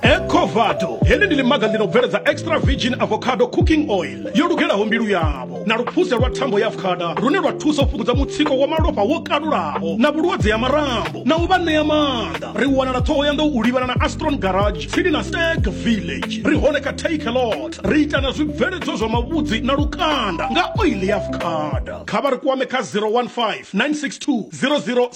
ecovado heḽi ndi ḽimaga ḽi no bveledza extra virgin avocado cooking oil yo lugelaho mbilu yavho na luphuse lwa thambo ya afukada lune lwa thusa u fhungudza mutsiko wa malofha wo kalulaho na vhulwadze ya marambo na u vha ṋea maanḓa ri wanala ṱhoho ya nḓou u livhana na astron garage tsini na stag village ri hone kha take lot ri ita na zwibveledzwa zwa mavhudzi na lukanda nga oil ya afukada kha vha ri kwame kha 015 962 00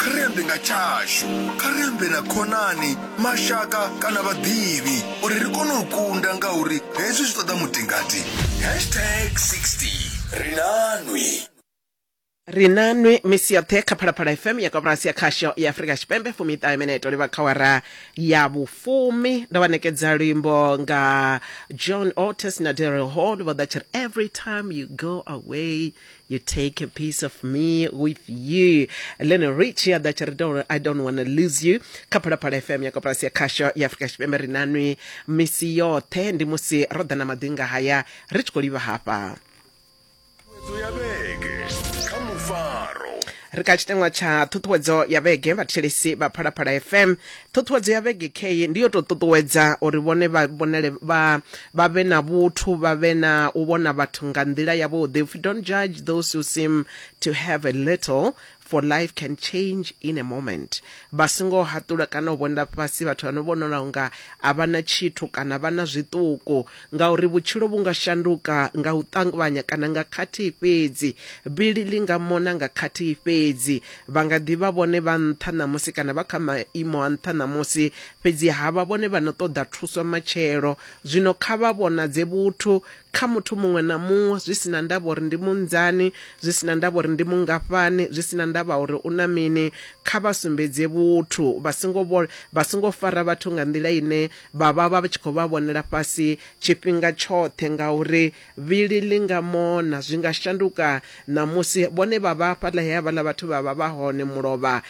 Kha ri ambe nga tshashu. Kha ri ambe na khonani, mashaka kana vhaḓivhi uri ri kone u kunda ngauri hezwi zwi ṱoḓa mutingati. Hashtag 60 Ri na nwi. Ri na nwi misi yoṱhe kha Phalaphala FM ya koporasi ya khasho ya Afrika Tshipembe fumiṱahe mineto livha kha wara ya vhufumi ndo vha nekedza luimbo nga John Otis na Daryl Hall vho ḓa tshiri every time you go away You take a piece of me with you. Lionel Richie aḓa tshi ri don't, I don't want to lose you kha phalaphala fm ya koporasi ya khasho ya afurika tshipembe ri nanwi misi yoṱhe ndi musi ro ḓa na maḓinga haya ri tshi khou livha hafha Ṱhuṱhuwedzo ya vhege kha mufaro ri kha tshiteṅwa tsha ṱhuṱhuwedzo ya vhege vhathetshelesi vha phalaphala fm ṱhuṱhuwedzo ya vhege key ndi yo tou ṱuṱuwedza uri vhone vha vhonele vha vha vhe na vhuthu vha vhe na u vhona vhathu nga nḓila yavhuḓi if you don't judge those who seem to have a little for life can change in a moment vha songo haṱula kana u vhonela fhasi vhathu vhano vhonala unga a vha na tshithu kana vha na zwiṱuku Ngauri vhutshilo vhu nga shanduka nga u ṱangvanya kana nga khathihi fhedzi, bili ḽi nga mona nga khathihi fhedzi. Vha nga ḓi vha vhone vha nṱha ṋamusi kana vha kha maimo a nṱha ṋamusi, fhedzi ha vha vhone vha no ṱoḓa thuso matshelo. Zwino kha vha vhonadze vhuthu kha muthu muṅwe na muṅwe, zwi si na ndavha uri ndi munzani, zwi si na ndavha uri ndi mungafhani, zwi si na ndavha uri u na mini, kha vha sumbedze vhuthu. Vha songo vha songo fara vhathu nga nḓila ine vha vha vha tshi khou vha vhonela fhasi tshifhinga tshoṱhe ngauri vhili ḽi nga mona zwi nga shanduka na musi vhone vha vha fhaḽa he havhaḽa vhathu vha vha vha hone mulovha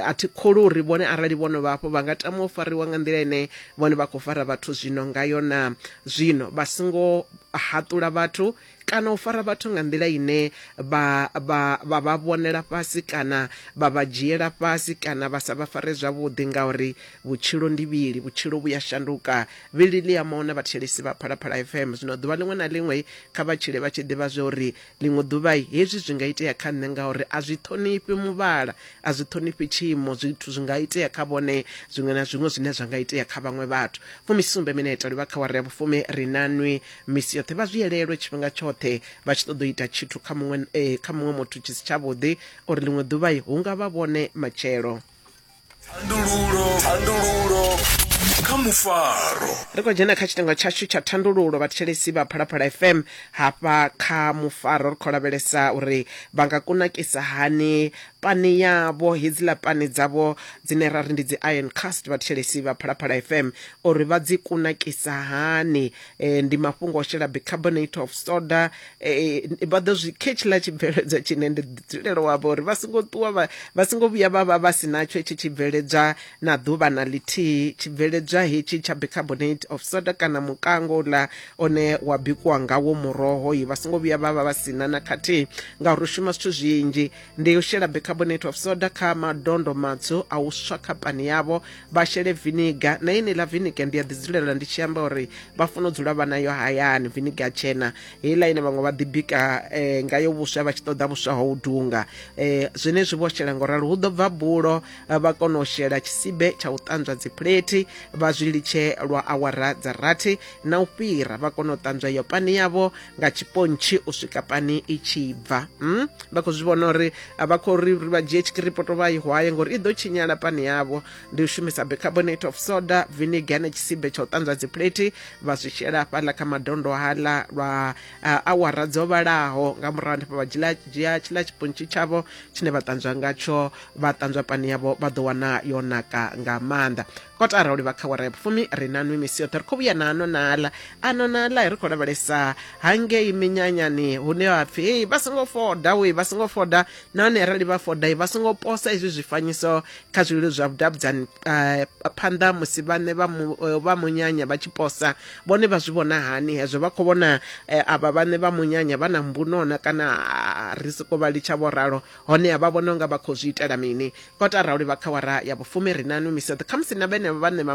a thi khulu uri vhone arali vho no vha hafho vha nga tama u fariwa nga nḓila ine vhone vha khou fara vhathu zwino ngayo na zwino vha songo haṱula vhathu kana u fara vhathu nga nḓila ine vha vha vha vha vhonela fhasi kana vha vha dzhiela fhasi kana vha sa vha fare zwavhuḓi ngauri vhutshilo ndi vhili vhutshilo vhu ya shanduka vhili ḽi ya mona vhathetshelesi vha phalaphala fm zwino ḓuvha ḽiṅwe na ḽiṅwe kha vha tshile vha tshi ḓivha zwa uri ḽiṅwe ḓuvha hezwi zwi nga itea kha nṋe ngauri a zwi ṱhonifhi muvhala a zwi ṱhonifhi tshiimo zwithu zwi nga itea kha vhone zwiṅwe na zwiṅwe zwine zwa nga itea kha vhaṅwe vhathu fumisumbe mineta livha kha wari ya vhufumi ri nanwi misi yoṱhe vha zwi elelwe tshifhinga tshoṱhe vha tshi ṱoḓa u ita tshithu kha muṅwe eh, kha muṅwe muthu tshi si tshavhuḓi uri ḽiṅwe ḓuvha hu nga vha vhone matshelo thandululo thandululo kha mufaro ri khou dzhena kha tshitengo tshashu tsha thandululo vhathetshelesi vha phalaphala fm hafha kha mufaro ri khou lavhelesa uri vha nga kunakisa hani pani yavho hedziḽa pani dzavho dzine ra ri ndi dzi iron cast vhathetshelesi vha phalaphala fm uri vha dzi kunakisa hani eh, ndi mafhungo o shela bicarbonate of soda eh, vha ḓo zwi khe tshiḽa tshibveledzwa tshine ndi dzulelo wavho uri vha songo ṱuwa vha- vha songo vhuya vha vha vha si natsho hetshi tshibveledzwa na ḓuvha na ḽithihi tshibveledzwa hetshi tsha bicarbonate of soda kana mukango uḽa one wa bikiwa ngawo muroho yi vha songo vhuya vha vha vha si na na khathihi ngauri u shuma zwithu zwinzhi ndi u shela bicarbonate of soda kha madondo matswu a u swa kha pani yavho vha shele viniga na ine ḽa viniga ndi a ḓidzulela ndi tshi amba uri vha funa u dzula vha nayo hayani viniga tshena heiḽa ine vhaṅwe vha ḓibika eh, ngayo vhuswa vha tshi ṱoḓa vhuswa ho u dunga eh, zwenezwi vho shela ngo ralo hu ḓo bva bulo eh, vha kona u shela tshisibe tsha u ṱanzwa dzipuleti vha zwi litshe lwa awara dza rathi na u fhira vha kona u ṱanzwa iyo pani yavho nga tshipontshi u swika pani i tshi bva mm? vha khou zwi vhona uri a vha khou ri uri vha dzhie tshikiripoto vha i hwaye ngori i ḓo tshinyala pani yavho ndi u shumisa bicarbonate of soda vinegar na tshisibe tsha u ṱanzwa dziplate vha zwi shela hafhaḽa kha madondo haḽa lwa uh, awara dzo vhalaho nga murahu hanefho vha dzhia dzhia tshiḽa tshipontshi tshavho tshine vha ṱanzwa ngatsho vha ṱanzwa pani yavho vha ḓo wana yo naka nga maanḓa kotara u livha kha wara ya vhufumi ri na nwi misi yoṱhe ri khou vhuya na ano na aḽa ano na aḽa ri khou lavhelesa hangei minyanyani hune ha pfhi hei vha songo foda we vha songo foda nahone arali vha foda vha songo posa izwi zwifanyiso kha zwililo zwa vhudavhudzani eh, phanḓa musi vhane vha mu- eh, vha munyanya vha tshi posa vhone vha zwi vhona hani hezwo vha khou vhona eh, avha vhane vha munyanya vha na mbunona kana ah, ri soko vha litsha vho ralo Honeha vha vhona u nga vha khou zwi itela mini? Kotara u livha kha awara ya vhufumi ri na nwi misado. Khamusi na vhenevho vhaṋe vha.